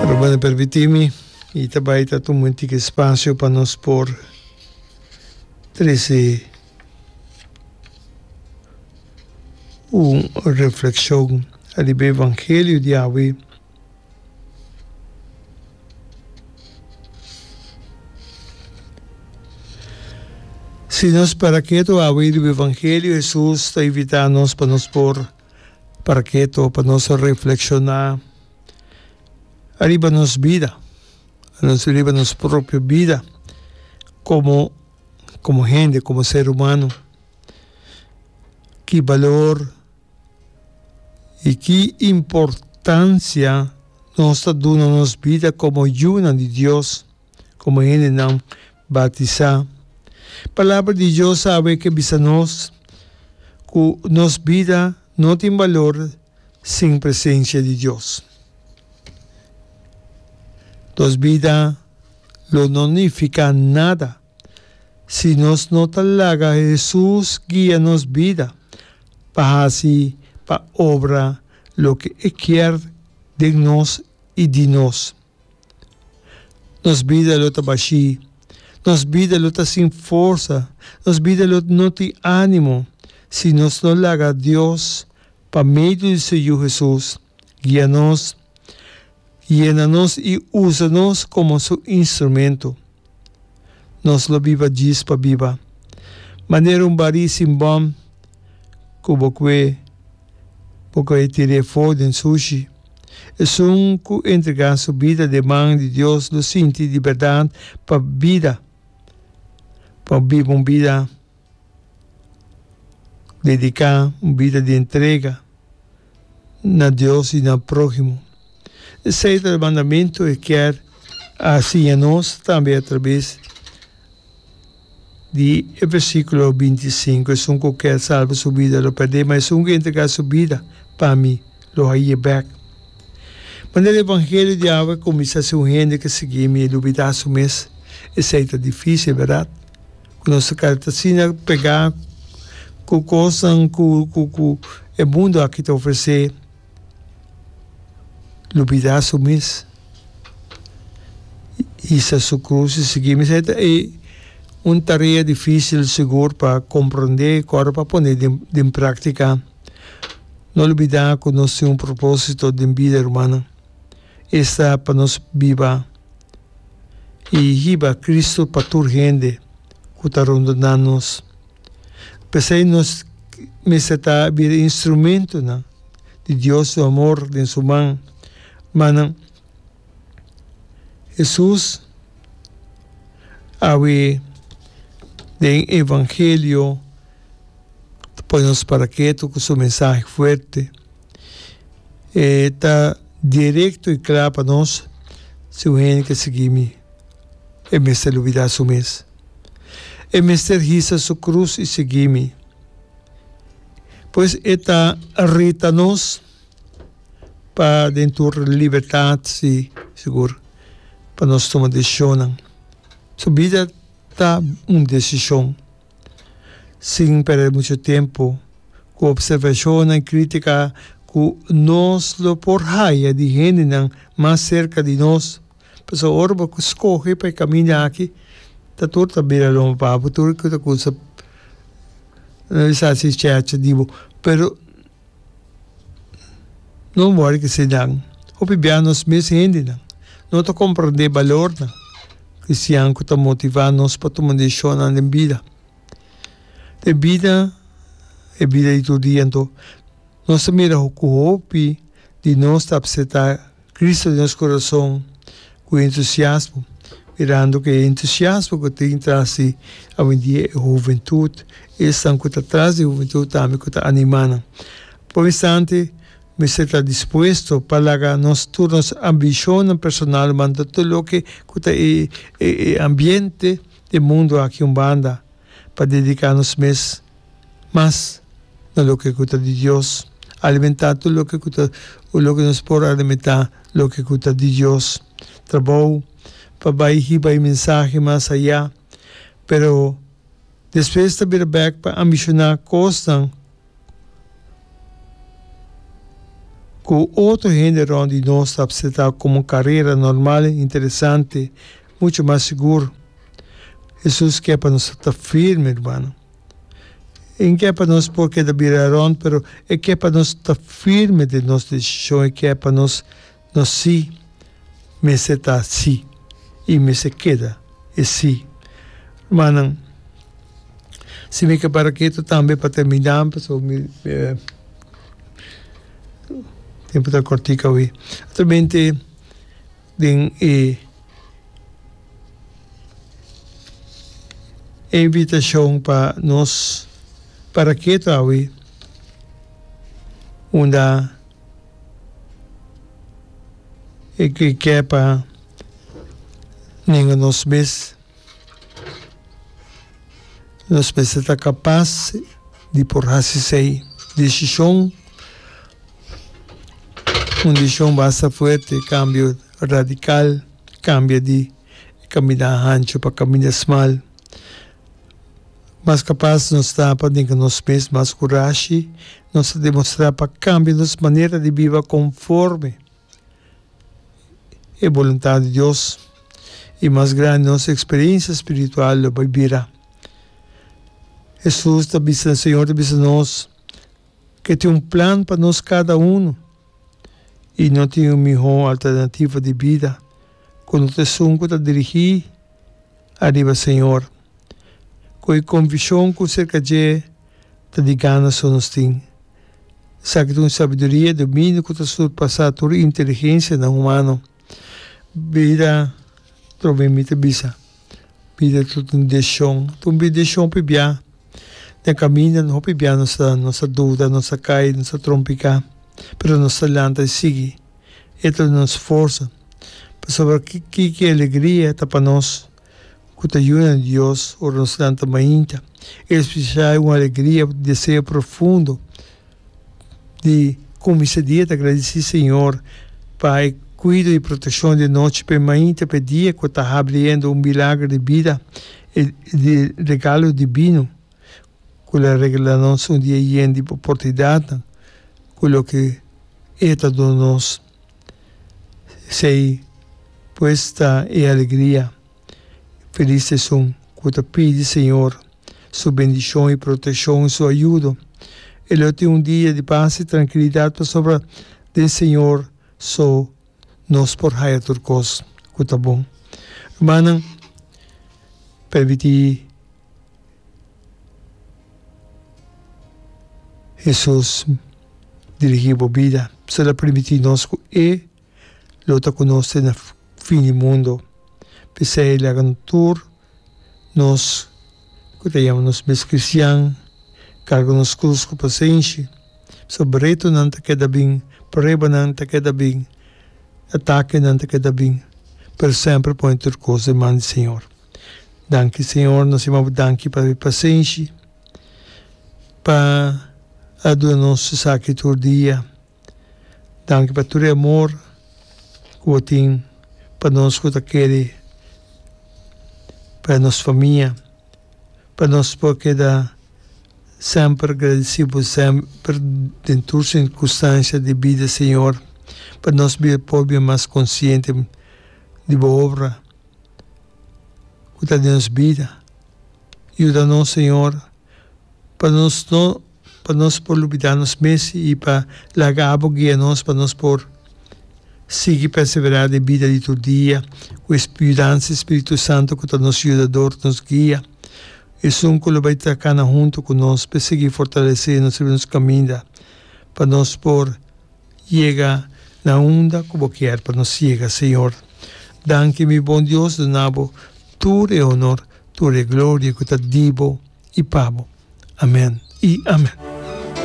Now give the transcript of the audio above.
Hermano permiti mi y ta bay ta tuma un tiki espacio pa nos por trece un reflexion ariba e evangelio di awe si nos para keto awe riba evangelio Hesus ta invita nos pa nos por. Parakee to pa nos reflekshoná ariba nos bida, ariba nos propio bida komo komo hende, komo ser humano. Ki balor i ki importansia nos ta duna nos bida komo yunan di Dios? komo hendenan bautisá. Palabra di Dios a haber ke bisa nos ku nos bida no tin balor sin presensia di Dios. Nos bida lo no nifiká nada si nos no ta laga Hesus guia nos bida pa hasi pa obra loke e kier den nos i di nos. Nos bida lo ta bashí, nos bida lo ta sin forsa, nos bida lo no tin ánimo si nos no laga Dios pa medio di su Yu Hesus guia nos, yena nos i usa nos komo su instrumento. Nos lo biba djis pa biba. Manera un barí sin bòm ku bo kue, bo kue tir'é afó den sushi. Esun ku entregá su bida den man di Dios lo sinti di bèrdat pa bida, pa biba un bida. Dedica un bida di entrega na Dios y na prohimo. Esey ta e mandamento e kier a siña nos tambe atraves di e versiculo binti i sinku, Esun cu kier salba su bida lo perdé, ma esun cu entrega su bida pa mi, lo haye bek. Ma den e evangelio di awa e cuminsa si un hende ke sigui mi e lubida su mes. Esey ta dificil, berdad? Ku nos a keda ta asina pegá ku kosnan ku ku e mundu aki ta ofresé, lubidá su mes, hisa su krus i sigui mes, esei ta e un tarea difísil sigur pa komprondé i kòrda pa pone den den práktika. No lubidá ku nos tin un propósito den bida, rumannan, esta pa nos biba. i hiba Kristu pa tur hende ku ta rondonan nos. P'esei nos mester ta bira instrumentunan di Dios su amor den su man. Ma nan, Hesus a wi den evangelio ta pone nos paraketu ku su mensahe fuerte. E ta direkto i kla pa nos, Si un hende ke sigui mi, e mester lubidá su mes. E mester hisa su krus i sigui mi. Pues e ta reta nos pa den tur libertat, si, sigur, pa nos tuma desishonnan. Su bida ta un desishon. Sin perde mucho tempo cu observacionnan critica cu nos lo por haya di hendenan mas cerca di nos. Pasobra ora bo scoge pa e caminda aki, ta tur ta bira loma pa bo, tur cu ta cusa, no bisa si cheche di bo, pero No wòrdu di se nan. Hopi bia nos mes hendenan no ta komprendé balornan kristian ku ta motivá nos pa tuma desishonnan den bida. Den bida, e bida di tur dia anto, nos ta mira ku hopi di nos ta apseptá. Cristo den nos corazon cu entusiasmo, mirando cu e entusiasmo cu tin tras di awendia e huventud, esnan cu ta tras di huventud tambe cu ta anima nan. Pa un instante mester ta dispuesto pa laga nos tur nos ambicionnan personal manda tur loke cu ta e e ambiente, e mundo aki un banda, pa dedica nos mes mas na loke ku ta di Dios, alimentá tur loke ku ta loke nos por alimentá loke ku ta di Dios. Trabou pa bai hiba e mensahe mas ayá, pero despues ta bira bèk pa ambishoná kosnan ku otro hende rònt di nos ta apsetá komo un karera normal, interesante, mucho mas sigur. Hesus ke pa nos ta firme, rumannan. E ke pa nos por keda bira rond pero e ke pa nos ta firme den nos desishon, e ke pa nos nos si mester ta si i mester keda e si. Rumannan, si mi ke para ketu tambe pa terminá pasobra mi tempu ta kòrtiku awe. Ateramente. Den e invitashon pa nos paraketo awe, unda e ke kè pa nenga nos mes Nos mester ta kapas di por hasi esei desishon, un desishon basta fuerte, kambio radikal, kambia di e kaminda hanchu pa kaminda smal. Mas kapas nos ta pa denka nos mes, mas kurashi nos ta demostrá pa kambia nos manera di biba konforme. e boluntat di Dios i mas grandi nos eksperensia spiritual lo bai bira. Hesus ta bisa, Señor ta bisa nos ku e tin un plan pa nos kada unu i no tin un mihó alternativa di bida ku no ta esun ku ta dirigí ariba Señor. Cu e convicion cu cerca dje ta di gana so nos tin. Esaki ta un sabiduria y dominio cu ta surpasa tur inteligencianan humano. Bida trova e mi ta bisa, bida ta un decision, ta un decision p'e bia. Den caminda hopi bia nos ta nos ta duda, nos ta cay, nos ta trompica, pero nos ta lanta y sigui. E ta nos forza. Pasobra ki alegria ta pa nos. ku ta yuda na Dios ora nos lanta mainta. E espiritualidad i un alegria, deseo profundo di kuminsá e dia ta gradici Señor pa e cuido i proteccion di anochi pa e mainta pa e dia ku ta habliendo un milagro di bida i di regalo divino ku lo a regala nos un dia yen di oportunidadnan ku loke E ta duna nos. Sei pues ta e alegria i felis seson ku ta pidi Señor su bendishon i protekshon i su ayudo. E lo tin un dia di pas i trankilidat pasobra den Señor so nos por haya tur kos ku ta bon. Rumannan, permití. Hesus dirigí bo bida so ta permití nos ku e lo ta ku nos te na fin di mundu. P'esei laga tur nos ku ta yama nos mes kristian karga nos krus ku pasenshi. Pasobra retonan ta keda bin, pruebanan ta keda bin, atakenan ta keda bin, pero semper pone tur kos den man di Señor. Danki Señor nos yama bo danki pa e pasenshi pa a duna nos esaki tur dia danki pa tur e amor ku bo tin pa nos ku ta kere pa nos famia pa nos por keda semper agradesi bo semper den tur sirkunstansia di bida Señor pa nos por bira mas konsiente di bo obra. ku ta den nos bida. Yuda nos, señor, pa nos no pa nos por lubidá nos mes i pa laga abo guia nos pa nos por sigui perseverá den bida di tur dia ku e yudansa di spiritu santu ku ta nos yudador, nos guia. Esun ku lo bai ta kana huntu ku nos p'e sigui fortalesé nos riba nos kaminda pa nos por. Yega na unda ku bo kier pa nos yega, Señor. Danki mi bon Dios, duna bo tur e honor, tur e gloria ku ta di bo i pa bo. Amen i amen.